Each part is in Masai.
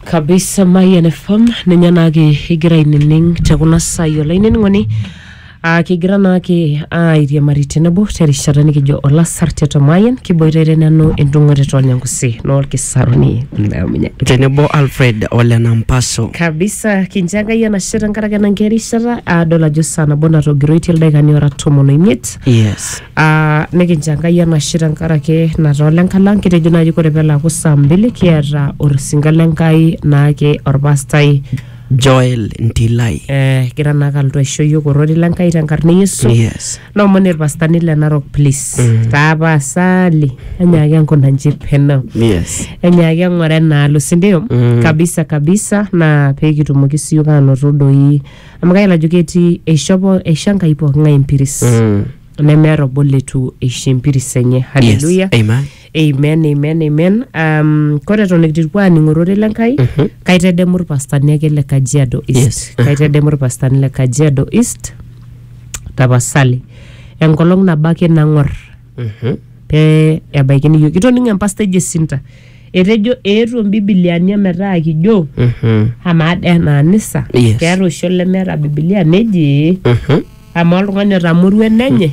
kabisa Mayian FM ninye naake igira ainining te kuna saai olainining'oni aa kigira naake airiamari tenebo terishata nikijo olasar tiatua Mayian kiboitare nanu endung'oret olnyangusi noolkisaruni Naominye. tenebo alfred ole nampaso kabisa kincho enkai enashe tenkaraki ena nkae rishata aadol ajo saa nabo natogiroitie ildaikani ora tomon oimiet yes Uh, nikincho enkai enashe tenkaraki nataa olenka lang kitejo naaji kore pelaaku saa mbili kiata orsinka lenkai naake orpastai Joel Ntilai. eh, gira naake alotu aisho yiok orori lenkai tenkarna e yesu Yes. naomoni irpastani le narok please mm. tapasali enyaaki enkuna nji peno Yes. enyaaki eng'ore enaalo sindio Mm. kabisa kabisa naa peekitumoki siyiok aanoto doi amu kayiolo ajo ketii eishopo eisho enkai pooking'ae empiris Mm. nemeeta obo leitu eisho empiris enye Yes. haleluya Amen. amen amen amen um, kore eton ikitipuo aaning ororei le nkai Mhm. kaitedemu irpastani ake le kajiado east Yes. kaitedemu irpastani le kajiado east tapasali enkolong nabo ake nang'or Mhm. Pee ebaiki niyieu. Kitoning empasta eji Sinta. Etejo eetuo mbibiliani ometaa kijo Mhm. amaa dee ena anisa Yes. keeta oshi olemeeta bibilia neji Mhm. amaa oltung'ani otamorua enenye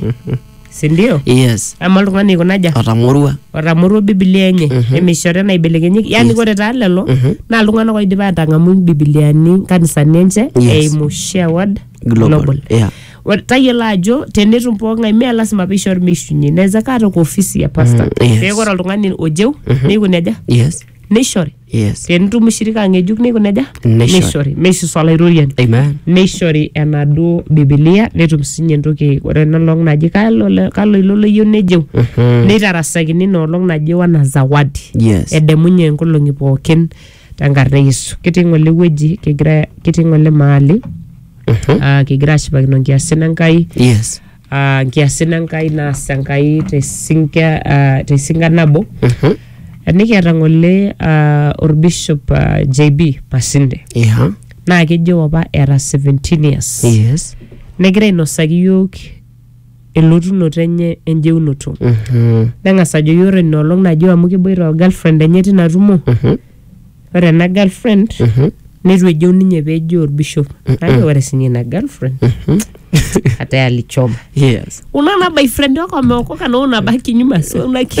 sindio Yes. amaa oltung'ani aikunaja Otamorua. otamorua bibilia enye nemeishori enaibelekenyieki yani ore taa lelo naa iltung'anak oidipa atang'amu mbibiliani nkanisani enche Yes. eimu shared Global. Yeah. Ore- tayiolo ajo tenetum pooking'ae mee lasima peishori meishunye naweza kaa toka ofisi ya pasta Mm, yes. peeku ore oltung'ani ojeu neiko neja Yes. neishori Yes. tenitum shirika ng'ejuk neiko neja Neishori. neishori meisusa olairoriani Amen. neishori enaduo bibilia netum sinye entoki ore enolong naji kalo le- kalo ilo loyieu nejeu neitarasakini ina olong naji wana zawadi Yes. edemunye nkolong'i pookin tenkarna e Yesu. Kitii ng'ole wueji, kigira kitii ng'ole mahali ah, kigira ashipakino nkiasin Enkai Yes. ah, nkiasin Enkai naas Enkai tesinka ah, tesinka nabo. Mhm. Nikiata ng'ole ah, orbishop ah, JB Masinde Yeah. naa kejo apa eeta 17 years. Yes. Negira ainosaki iyiook elotunoto enye enjeunoto Mhm. neng'as ajoki ore ina olong najo amu keboita o girlfriend enye tina tumo Mhm. ore ena girlfriend Mhm. neitu ejeu ninye pejo orbishop najo ore sinye ina girlfriend ate alichoma Yes. unaona boyfriend wako ameokoka na unabaki nyuma so unaki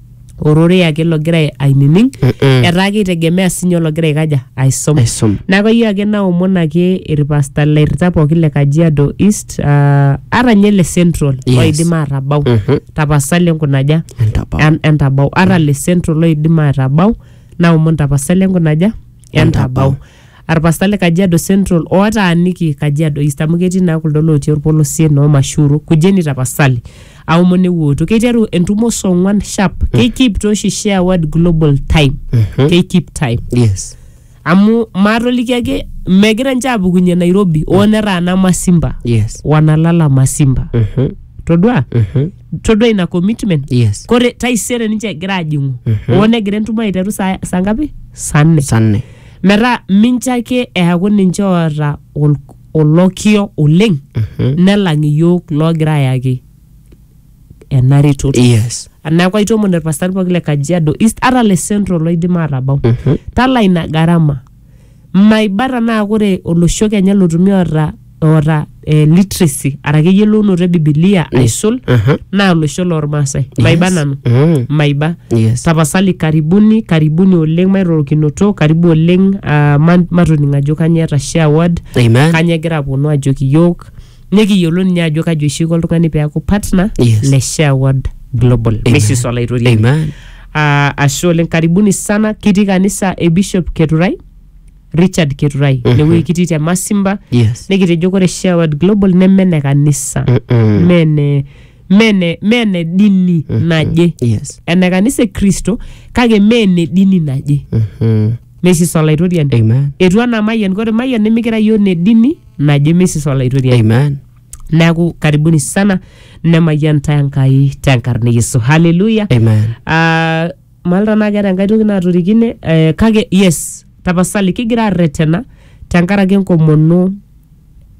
ororei ake logira ainining Mm-mm. etaa keitegemea sinye ologira aikaja aisom Aisom. neeku ayieu ake naomon ake irpasta lairrita pooki le kajiado east uh, ata nye le central Yes. oidim atabau Mhm. tapasali enkunaja Entabau. En- entabau ata le central oidim atabau naomon tapasali enkunaja entabau Arpasta le Kajiado Central otaaniki Kajiado East amu ketii naa kuldo lootii orpolosie noo Mashuru, kujeni tapasali aomon ewuooto. Keiteru entumo saa ong'wan sharp. Keikip tooshi share word global time. Keikip time. Yes. Amu maatoliki ake megira ninche aapukunye Nairobi oo netaana Masimba. Yes. Wanalala Masimba. Mhm. Todua? Mhm. Todua ina commitment. Yes. Kore taisere ninche egira aajing'u. Oo negira entumo aiteru saa saa ngapi? Saa nne. Saa nne. metaa mincho ake eaku ninche oota ol- olokio oleng nelang iyiook loogira ayaki ena retoto yes neeku aitoomon irpastani pooki le kajiado east ata le central loidim aatabau talaa ina gharama maiba tanaa ore olosho kenya lotumi oota oota eh, literacy araki eyiolounoto e bibilia aisul Aha. naa olosho loormaasai maiba nanu Mm. maiba Yes. tapasali karibuni karibuni oleng mairorokinoto karibu oleng ah, ma- matoning ajo kanyoo eeta share word Amen. kanyoo egira aponu ajoki iyiok nikiyiolo ninye ajo kaji oshi iko oltung'ani peeku partner Yes. le share word global Amen. misis olaitoriani Amen. Ah, ashe oleng karibuni sana kitii kanisa e bishop keturai Richard Keturai Mhm. inewueji kitii te Masimba Yes. nikitejo ore Share World Global neme ene kanisa Mm-mm. mee ene- mee ene- mee ene dini naje Yes. ene kanisa e Kristo kake mee ene dini naje Mhm. mesis olaitoriani Amen. etu anaa mayian kore mayian nimikira yiok ne dini naje mesis olaitoriani Amen. neaku karibuni sana nemayian tae Enkai tenkarna e Yesu haleluya Amen. Ah, mayiolo tenaa keeta enkae toki naatorikine eh, kake yes tapasali kigira arretena tenkaraki enkomono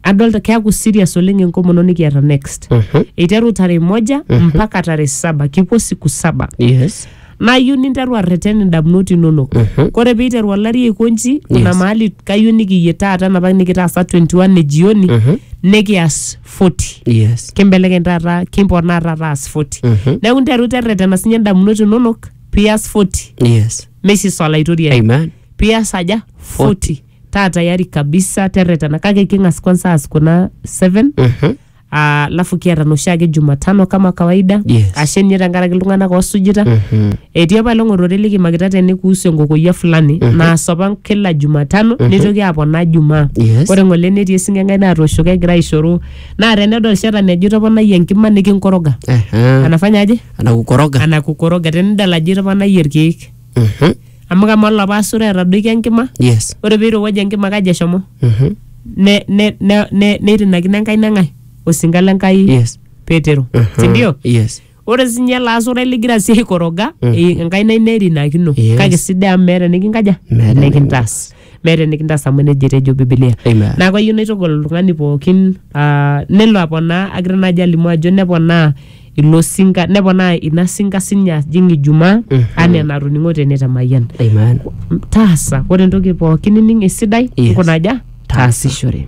adolta keaku serious oleng enkomono nikiata next Mhm. eiteru tarehe moja mpaka tarehe saba kipuo siku saba Yes. nayieu ninteru arreten indamunot inonok Mhm. kore piiteru olari aikonji kuna Yes. mahali kayieu nikiyie taata enapa nikitaasa 21 e jioni Mhm. nikias 40 yes kimbelekeny taata kimponaa taata aas 40 Mhm. neeku nteru terretena sinye ndamunot inonok pias 40 yes mesis olaitoriani amen pias aja 40 taa tayari kabisa terretena kake king'as kwanza aas kuna 7 Mhm. alafu kiata noshiake jumatano kama kawaida Yes. ashe ninye tenkaraki iltung'anak oosujita Mhm. Etii apa olong ororei likimakita tene kuhusu enkokoyia fulani naas apa kila Jumatano neitoki aponaa Jumaa. Yes. Ore ng'ole netii esing'eng'ai natooshoki egira aishoru naa tenedol shetani ajo itoponayie enkima nikinkoroga. Aha. Anafanya aje? Anakukoroga. Anakukoroga tenidol ajo itoponayie irkeek. Mhm. Amu kamaa olapa asura etadoikia enkima, Yes. ore peirowuaja enkima kaji eshomo? Mhm. Ne- ne- ne- ne- neirinakino Enkai neng'ae? Osinka le Enkai Yes. Petero. Mhm. Sindio? Yes. ore sinye ele asurai ligira sii aikoroga eh, enkaina ino erinakino Yes. kake sidai amu meeta enikinkaja Meeta enikintaas meeta enikintaas amu nejia etejo bibilia Amen. neeku ayieu naitogol oltung'ani pookin ah, nelo aponaa agira naaji alimu ajo neponaa ilo sinka neponaa ina sinka sinye ajing ijumaa anaa enatoning'o tene te mayian Amen. taasa ore entoki pookin nining esidai Yes. nkunaja taasishore